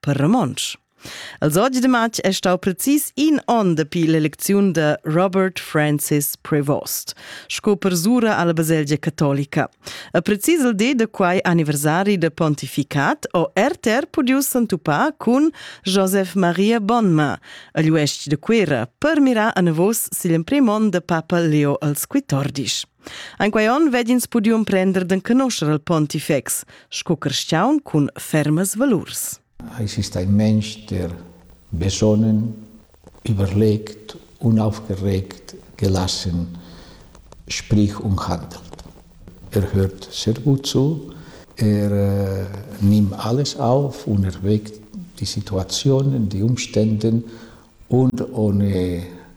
per romontsch. Els oggi de matg è stau precis in onn dapi l'elecziun de Robert Francis Prevost, sco persura alla baselgia catolica. A precis il de de quai anniversari de pontificat o RTR pudiu s'entupar cun Joseph Maria Bonma, agl uestg de Quera, per mirar a navos sigl emprem onn de papa Leo als Quitordisch. An quei onn veg'ins pudiu emprender d'enconoscher il pontifex sco carstgaun cun fermas valurs. Exista in mensch, der besonnen, überlegt, unaufgeregt, gelassen, sprich und handelt. Er hört sehr gut zu, er äh, nimmt alles auf und erwägt die Situationen, die Umstände und ohne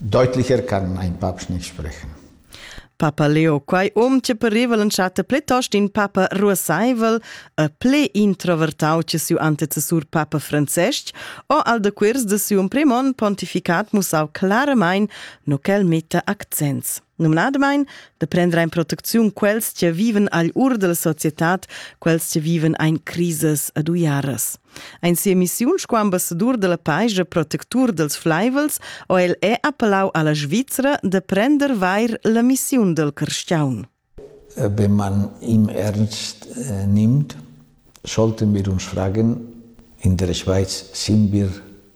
Deutlicher kann mein Papst nicht sprechen. Papa Leo quai um che pareva l'entschatta plitost in papa ruassaivel e ple introvertau che siu antecessur papa Francesc, o al decuers de siu emprimon pontificat mussau claramain no quel metta accents. numnadamain da prender en protecziun quels che viven agl ur della societad, quels che viven ein crises ad uiaras. Ein sia missiun sco ambassador della país e protectur dels flaivels o el è appelau alla Svizzera de prender vair la missiun del cristiaun. Wenn man ihm ernst äh, nimmt, sollten wir uns fragen, in der Schweiz sind wir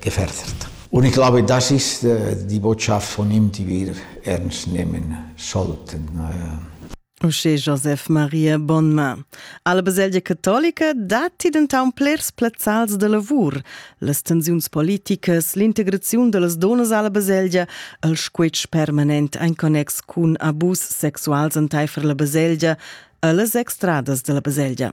che verzert. Un ich glaube, das ist die Botschaft, von ihm, die wir ernst nehmen sollten. Uschè Josef Maria Bonma. Alla baselgia catolica datti dentant plers plazzals da lavur. Las tensiuns politicas, l'integraziun da las donas alla baselgia, il squitsch permanent en connex cun abus sexuals entaifer la baselgia, e las extradas della baselgia.